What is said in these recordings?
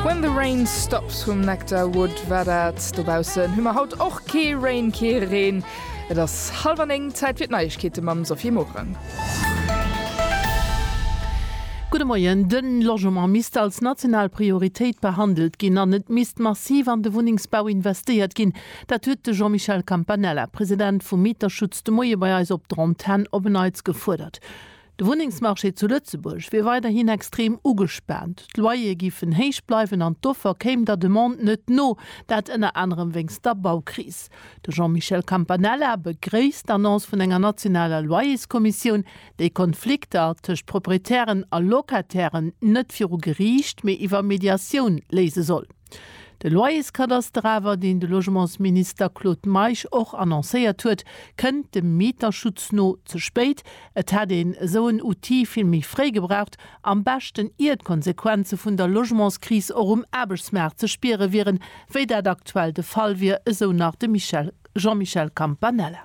When the rain stops vum Nectar Wood war dat. Dobaussen hu mer haut och kee Rain, kee Reen. Et ass hallef an néng, Zäit fir d'Neiegkeete mam Sophie Morang. Gudde Moien. De Logement misst als national Prioritéit behandelt ginn an et misst massiv an de Wunnengsbau investéiert ginn. Dat huet de Jean-Michel Campanella, President vum Mieterschutz, de Moie bei eis op der Antenn op en Neits gefuerdert. De Wunnengsmarché zu Lëtzebuerg wier weiderhin extrem ugespaant. D'Loyere giffen héich bleiwen an d'Offer kéim der Demande net no, dat ënner anerem wéinst der Baukris. De Jean-Michel Campanella begréisst d'Annonce vun enger nationaler Loyerskommissioun, déi Konflikter tëscht Proprietären a Locatairen net viru Geriicht, mee iwwer Mediatioun léise soll. De Loyerskadaster awer, deen de Logementsminister Claude Meisch och annoncéiert huet, kënnt dem Mieterschutz no ze spéit. Et hätt een esou en Outil vill méi fréi gebraucht, am beschten ier d'Konsequenze vun der Logementskris och um Aarbechtsmaart ze spiere wieren, wéi dat aktuell de Fall wier, esou nach de Michel Jean-Michel Campanella.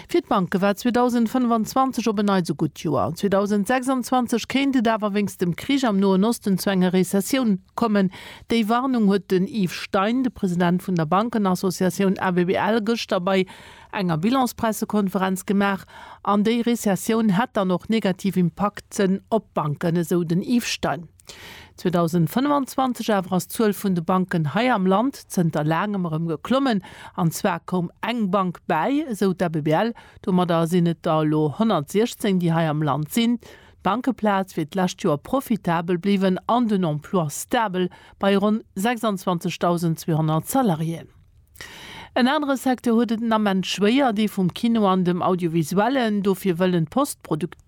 Fir d'Banke war 2025 op en Neits e gutt Joer. 2026 kéint et awer wéinst dem Krich am Noen Osten zu enger Rezessioun kommen. Déi Warnung huet den Yves Stein, de President vun der Bankenassociatioun ABBL, gëschter bei enger Bilanspressekonferenz gemaach. An déi Rezessioun hätt dann och negativ Impakten op d'Banken, esou den Yves Stein. 2025 awer ass d'Zuel vun de Banken hei am Land zënter laangem erëm geklommen. An zwar koum eng Bank bäi, esou d'ABBL. Domadder sinn et der elo 116, déi hei am Land sinn. D'Bankeplaz wier d'lescht Joer profitabel bliwwen an den Emploi stabel bei ronn 26.200 Salariéen. En anere Secteur huet et den Ament schwéier, dee vum Kino an dem Audiovisuellen. Dofir wëllen d'Post-Produktioune.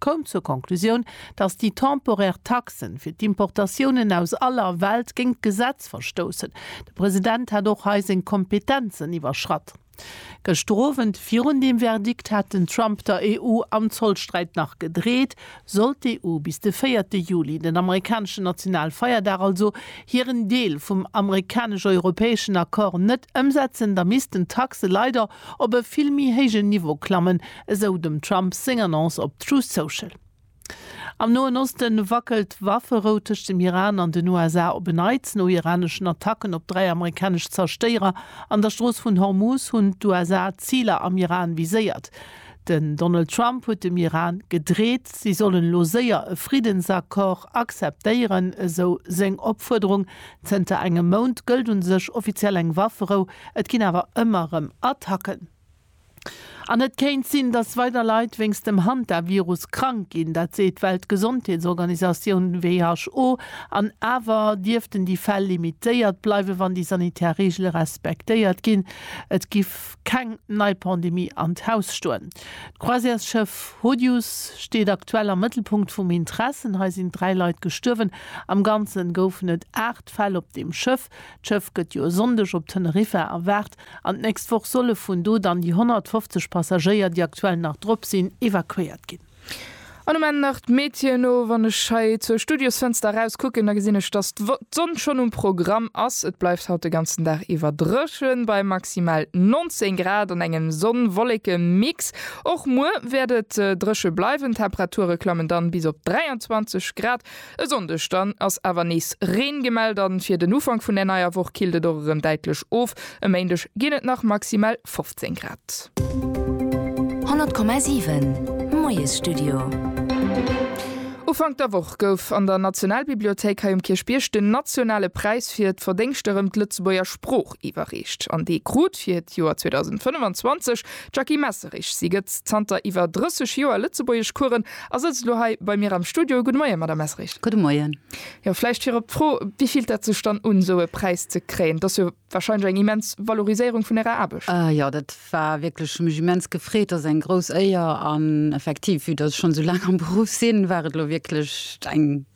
koum zur Conclusioun, datt déi temporär Taxen fir d'Importatiounen aus aller Welt géint d'Gesetz verstoussen. De President hätt och hei seng Kompetenzen iwwerschratt. Gëschter Owend, virun deem Verdikt, hat den Trump der EU am Zollsträit nach gedreet. Sollt d'EU bis de véierte Juli, den amerikaneschen Nationalfeierdag also, hiren Deel vum amerikanesch-europäeschen Accord net ëmsetzen, da missten d'Taxe leider op e vill méi héijen Niveau klammen, esou dem Trump seng Annonce op Truth Social. Am Noen Oste wackelt d'Wafferou tëscht dem Iran an den USA op en Neits. No iraneschen Attacken op dräi amerikanesch Zerstéierer an der Strooss vun Hormuz hunn d'USA Ziler am Iran viséiert. Den Donald Trump huet dem Iran gedreet, si sollen elo séier e Friddensaccord acceptéieren, esou seng Opfuerderung. Zënter engem Mount gëllt u sech offiziell eng Wafferou, et ginn awer ëmmer erëm Attacken. An et kéint sinn, datt weider Leit wéinst dem Hantavirus krank ginn. Dat seet d'Weltgesondheetsorganisatioun who. An awer dierften déi Fäll limitéiert bleiwen, wann déi sanitär Reegele respektéiert ginn. Et giff keng nei Pandemie an d'Haus stoen. D'Croisièresschëff Hodius steet aktuell am Mëttelpunkt vum Intressen. Hei sinn dräi Leit gestuerwen. Am Ganze goufen et aacht Fäll op deem Schëff. D'Schëff gëtt jo e Sonndeg op Teneriffa erwaart. An d'nächst Woch solle vun do dann déi 150 Passagéier, déi aktuell nach drop sinn, evakuéiert ginn. An um Enn nach d'Météo. No, wann ech hei zur Studiosfënster eraus kucken, da gesinn ech, dass d'Sonn schonn um Programm ass. Et bleift haut de ganzen Dag iwwer dréchen, bei maximal 19 Grad an engem Sonn-Wolleke-Mix. Och muer wäert et dréche bleiwen, d'Temperature klammen dann bis op 23 Grad. E Sonndeg dann ass awer nees Reen gemellt an fir den Ufank vun der neier Woch killt et och erëm däitlech of. E Méindeg ginn et nach maximal 15 Grad. 100,7 Moiesstudio. Ufank der Woch gouf an der Nationalbibliothéik hei um Kierchbierg den nationale Präis fir d'Verdéngschter ëm d'Lëtzebuerger Sprooch iwwerreecht. An dee krut fir d'Joer 2025 d'Jackie Messerich. Si gëtt zanter iwwer 30 Joer Lëtzebuergeschcoursen A sëtzt elo hei bei mir am Studio. Gudde Moien, Madamm Essrich. Gudde Moien. Jo, vläicht virop d'Fro, Wivilt dat sech dann un, esou e Präis ze kréien? Et ass jo warscheinlech eng immens Valoriséierung vun Ärer Aarbecht. Jo, dat war wierklech, hu mech immens gefreet. Dat ass eng grouss Éier an effektiv, vue datt ech schonn esou laang am Beruff sinn, war et elo wierklech eng.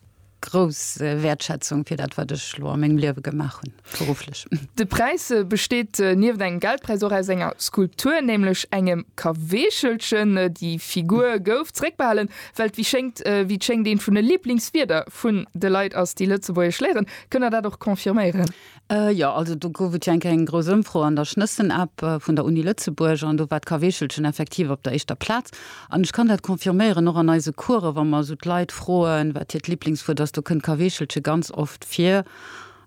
grouss Wäertschätzung fir dat, wat ech elo a mengem Liewe gemaach hunn, berufflech. De Präis besteet nieft engem Geldpräis och aus enger Skulptur, nämlech engem Kaweechelchen. Déi Figur gouf zeréckbehalen, well et wéi schéngt, wéi et schéngt, eent vun de Liblingswierder vun de Leit ass, déi Lëtzebuergesch léieren. Kënnt Der dat och confirméieren? Jo, also do gouf et jo eng Kéier eng grouss Ëmfro an der Schnëssen-App vun der Uni Lëtzebuerg an do war d'Kaweechelchen effektiv op der éischter Plaz. An ech kann dat confirméieren, och an eise Coursen, wa mer esou d'Leit froen, wat hiert Liblingswuert ass, do kënnt Kaweechelche ganz oft vir.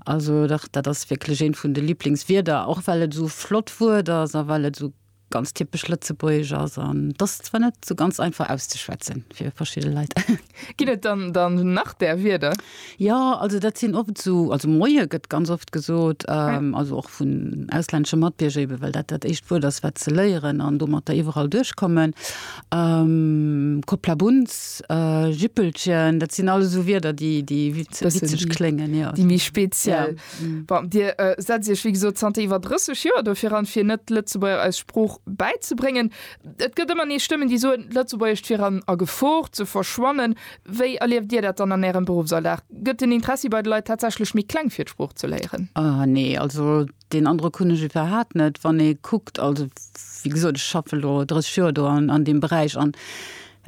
Also dach, dat ass wierklech eent vun de Liblingswierder, och well et esou flott Wuert ass a well et esou ganz typesch lëtzebuergesch ass an dass zwar net so ganz einfach auszuschwätzen fir verschiedene Leit. Ginn et dann dann nach där Wierder? Ja, also dat sinn oft so, also Moie gëtt ganz oft gesot, ähm, also och vun auslännesche Matbierger eben, well dat dat éischt Wuert ass, wat se léieren an domatter iwwerall duerchkommen. Ähm, Kopplabunz, äh, Jippelchen, dat sinn alles esou Wierder, déi, déi witzeg kléngen, jo. Déi méi speziell. Bon, Dir äh, setzt Iech, wéi gesot, zanter iwwer 30 Joer dofir an, fir net Lëtzebuerger eis Sprooch bäizebréngen. Et gëtt ëmmer nees Stëmmen, déi soen, d'Lëtzebuergescht wier an a Gefor ze verschwannen. Wéi erlieft Dir dat dann an Ärem Beruffsalldag? Gëtt den Interessi bei de Leit tatsächlech méi kleng, fir d'Sprooch ze léieren? Ah, nee, also deen Androck hunn ech iwwerhaapt net. Wann ee kuckt, also wéi gesot, ech schaffe lo 30 Joer do an, an deem Beräich an,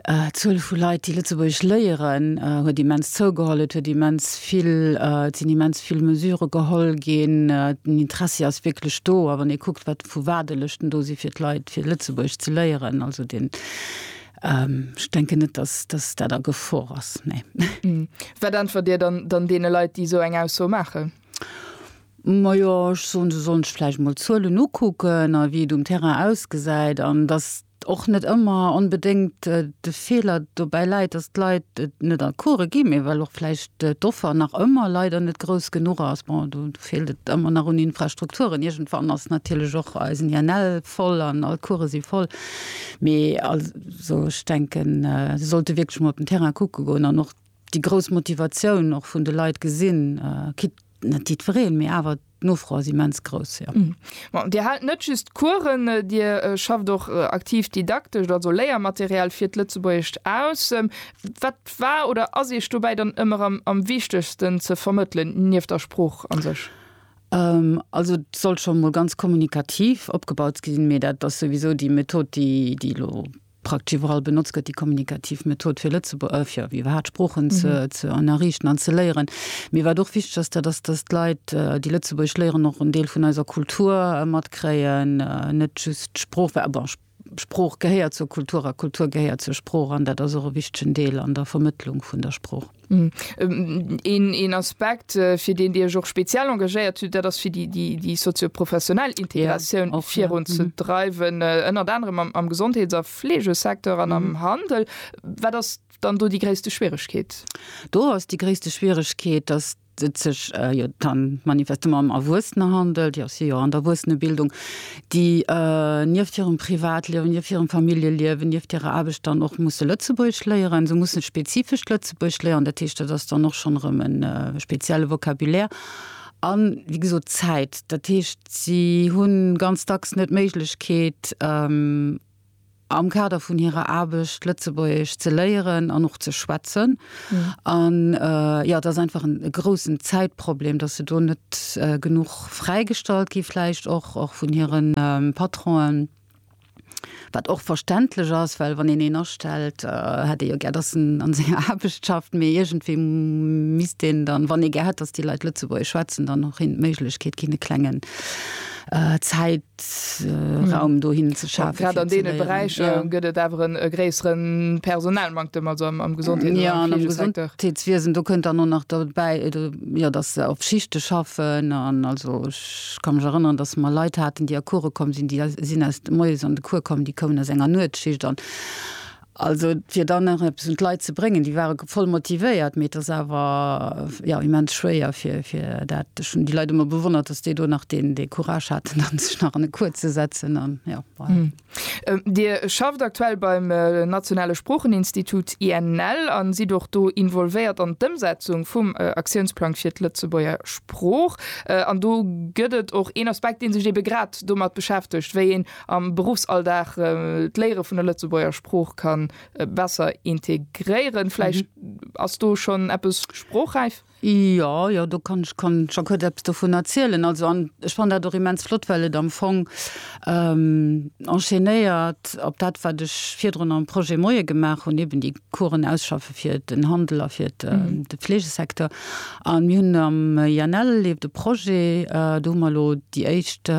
D'Zuel vu Leit, déi Lëtzebuergesch léieren, huet immens zougeholl. Et huet immens vill, et sinn immens vill Mesure geholl ginn. Den Interessi ass wierklech do. A wann ee kuckt, wat vu Waardelëschten do si fir d'Leit, fir Lëtzebuergesch ze léieren, also den, ech denken net, dass, dass dat a Gefor ass, nee. Wat äntwert Dir dann deene Leit, déi esou eng Ausso maachen? Majo, ech soen, se sollen sech vläicht emol d'Zuelen ukucken a wéi et um Terrain ausgesäit. An dass och net ëmmer onbedéngt de Feeler dobäi läit, dass d'Leit et net an d'Course ginn, mee well och vläicht d'Offer nach ëmmer leider net grouss genuch ass. Bon, do feelt et ëmmer nach un Infrastrukturen. Iergendwann ass natierlech och eisen INL voll an all d'Course si voll. Mee also ech denken, se sollte wierklech mol op den Terrain kucke goen an och déi grouss Motivatioun och vun de Leit gesinn, quitte net jiddwereen, mee awer. D'Nofro ass immens grouss, jo. Bon, Dir haalt net just Coursen, Dir schafft och aktiv didaktescht, also Léiermaterial fir d'Lëtzebuergescht aus. Wat war oder ass Iech dobäi dann ëmmer am wichtegsten ze vermëttelen, nieft der Sprooch a sech? Also et soll scho mol ganz kommunikativ opgebaut sinn, mee dat ass souwisou déi Method, déi elo Praktesch iwwerall benotzt gëtt déi kommunikativ Method, fir Lëtzebuer ë, fir iwwerhaapt Sproochen ze, ze ënnerriichten an ze léieren. Mir war et och wichteg, dass dat ass, dass d'Leit, déi Lëtzebuergesch léieren, och en Deel vun eiser Kultur matkréien, net just d'Sprooch, well, bon, Sprooch gehéiert zur Kultur a Kultur gehéiert zur Sprooch an dat ass och e wichtegen Deel an der Vermëttlung vun der Sprooch. Een Aspekt fir deen Dir Iech och speziell engagéiert hutt, dat ass fir déi sozio-professionell Integratioun och virun ze dreiwen, ënnert anerem am Gesondheets a Fleegesecteur an am Handel. Wat ass dann do déi gréisste Schwieregkeet? Do ass déi gréisste Schwieregkeet, datt et sech jo dann manifestement ëm Erwuessener handelt, jo si jo an der Erwuessenebildung, déi nieft hirem Privatliewen, nieft hirem Familljeliewen, nieft hirer Aarbecht dann och musse Lëtzebuergesch léieren. Se mussen spezifescht Lëtzebuergesch léieren. Dat heescht, dat ass dann och schonn erëm e spezielle Vocabulaire a wéi gesot Zäit. Dat heescht, si hu ganz dacks net d'Méiglechkeet, am Kader vun hirer Aarbecht Lëtzebuergesch ze léieren an och ze schwätzen. An jo, et ass einfach en groussen Zäitproblem, dass se do net genuch fräigestallt gi vläicht och och vun hire Patronen, wat och verständlech ass, well wann een een astellt, hätt ee jo gär, dass en a senger Aarbecht schafft. Mee iergendwéi misst een dann, wann ee gär hätt, dass déi Leit Lëtzebuergesch schwätzen, dann och hinnen d'Méiglechkeet ginn, e klengen Zäit, Aarbechtsraum hm. dohin ze schafen. Grad an deene Beräicher ja. gëtt et awer en e gréisseren Personalmanktem also am, am Gesundheet ja, an am Gesundheetswiesen. Do kënnt dann no nach dobäi äh, ja, dass se op Schichte schaffen an also ich kann mech erinnern, dass mer Leit haten, déi a Kure komm sinn, déi sinn aus Moies an de Kur kommen, déi kommen aus enger Nuetsschicht an Also et wier dann nach eppes un d'Leit ze bréngen. Déi ware voll motivéiert, mee et ass awer, jo, immens schwéier fir, fir dat. Ech hunn déi Leit ëmmer bewonnert, dass déi do nach deen, dee Courage haten, dann sech nach an e Cours ze setzen an, jo, voilà. Dir schafft aktuell beim nationale Sproocheninstitut, INL, a sidd och do involvéiert an d'Ëmsetzung vum Aktiounsplang fir d'Lëtzebuerger Sprooch. An do gëtt et och een Aspekt, dee sech ebe grad domat beschäftegt, wéi een am Beruffsalldag d'Léiere vun der Lëtzebuerger Sprooch kann besser integréieren. Vläicht ass do schonn eppes sprochräif? Jo, jo, do kann ech scho kuerz eppes dovun erzielen. Also an ech fannen dat och immens flott, well et am Fong enchaînéiert op dat, wat ech virdrun am Projet Moie gemaach hunn, eben déi. Coursen ausschaffe fir den Handel a fir de Fleegesecteur. A mir hunn am INL leeft e Projet, do hu mer elo déi éischt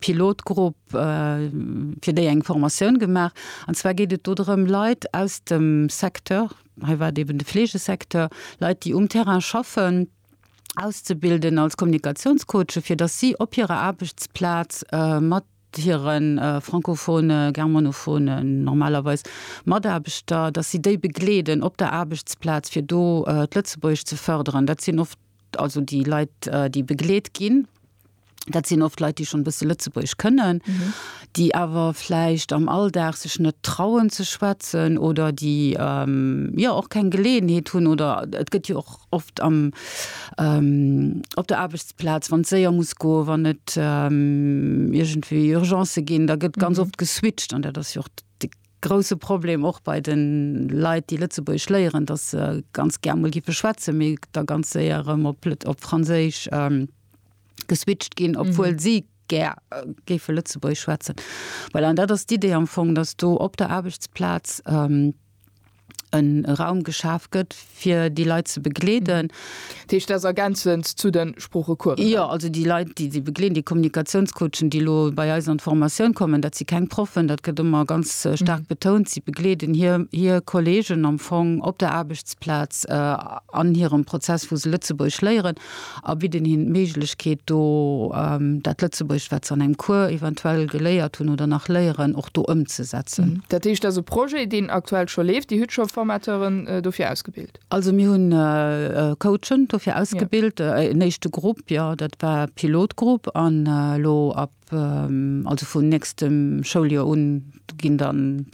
Pilotgrupp fir déi eng Formatioun gemaach. An zwar geet et do drëm, Leit aus dem Secteur, hei war et eben de Fleegesecteur, Leit, déi um Terrain schaffen, auszebilden als Kommunikatiounscoache, fir datt si op hirer Aarbechtsplaz mat hire francophone, germanophone, normalerweis, Mataarbechter, datt si déi begleeden op der Aarbechtsplaz, fir do d'Lëtzebuergesch ze fërderen. Dat sinn oft, also déi Leit, déi begleet ginn, dat sinn oft Leit, déi schonn e bësse Lëtzebuergesch kënnen, déi awer vläicht am Alldag sech net trauen ze schwätzen oder déi, jo, och keng Geleeënheet hunn oder et gëtt jo och, oft am op der Aarbechtsplaz, wann d'Séier muss goen, wann et iergendwéi Urgencë ginn, da gëtt ganz oft geswitcht. An dat ass jo och de grouse Problem och bei de Leit, déi Lëtzebuergesch léieren, datt se ganz gär emol gife schwätzen, mee da ganz séier erëm op Lët-, op Franséisch geswitcht ginn, obwuel si gär géife Lëtzebuergesch schwätzen. Voilà, an dat ass d'Idee am Fong, datt do op der Aarbechtsplaz, en Raum geschaf gëtt fir déi Leit ze begleeden. Dat heescht, dat ass ergänzend zu de Sproochecoursen? Jo, also déi Leit, déi si begleeden, déi Kommunikatiounscoachen, déi elo bei eis an d'Formatioun kommen, dat si keng Proffen, dat gëtt ëmmer ganz staark betount. Si begleeden hir hir Kolleegen am Fong op der Aarbechtsplaz an hirem Prozess, wou se Lëtzebuergesch léieren. a bidden hinnen d'Méiglechkeet do dat Lëtzebuergescht, wat se an engem Cours eventuell geléiert hunn oder nach léieren, och do ëmzesetzen. Dat heescht, dat ass e Projet, deen aktuell scho leeft. Dir hutt scho Formateuren dofir ausgebilt? Also mir hunn Coachen dofir ausgebilt, en éischte Grupp, jo, dat war e Pilotgrupp, an elo ab, also vun nächstem Schouljoer un, ginn dann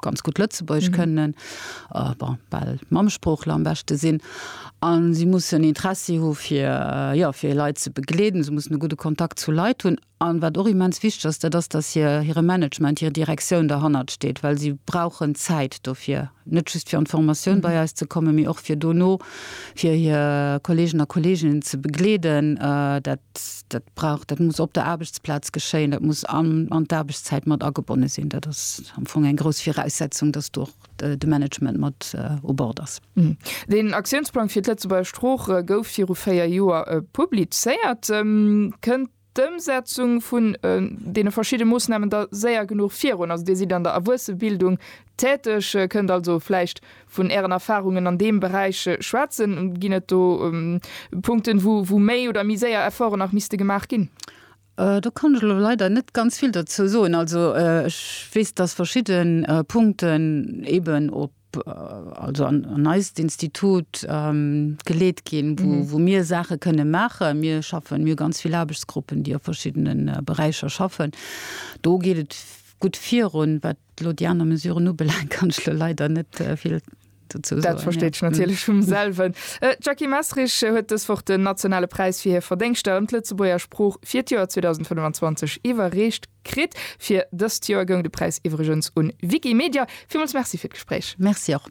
ganz gutt Lëtzebuergesch kënnen, bon, bal Mammesproochler am beschte sinn, a si mussen Interessi hu fir, jo, fir hir Leit ze begleeden, se mussen e gudde Kontakt zu Leit hunn. A wat och immens wichteg ass, dat ass, datt hir, hire Management, hir Direktioun derhannert steet, well si brauchen Zäit dofir, net just fir an d'Formatioun bei eis ze kommen, mee och fir dono fir hir Kolleegen a Kolleeginnen ze begleeden. Dat, dat brauch, dat muss op der Aarbechtsplaz geschéien, dat muss an, an d'Aarbechtszäit mat agebonne sinn. Dat ass. am Fong eng grouss Viraussetzung, dass do och de Management mat u Bord ass. Deen Aktiounsplang fir d'Lëtzebuerger Sprooch gouf viru véier Joer publizéiert. Kënnt d'Ëmsetzung vun deene verschidde Moossnamen da séier genuch virun? Also Dir sidd an der Erwuessebildung täteg, kënnt also vläicht vun Ären Erfarungen an deem Beräich schwätzen. Ginn et do Punkten, wou méi oder méi séier Efforten nach misste gemaach ginn? Do kann ech elo leider net ganz vill dozou soen. Also ech weess, dass verschidde Punkten eeben op, also an eist Institut geleet ginn, wou mir Saache kënne maachen. Mir schaffen, mir hu ganz vill Aarbechtsgruppen, déi a verschiddene Beräicher schaffen. Do geet et gutt virun. Wat elo déi aner Mesuren ubelaangt, kann ech elo leider net vill. Dat versteet ech natierlech vum selwen. D'Jackie Messerich huet dës Woch den nationale Präis fir hir Verdéngschter ëm d'Lëtzebuerger Sprooch fir d'Joer 2025 iwwerreecht kritt. Fir dëst Joer goung de Präis iwwregens un Wikimedia. Villmools Merci fir d'Gespréich. Merci och.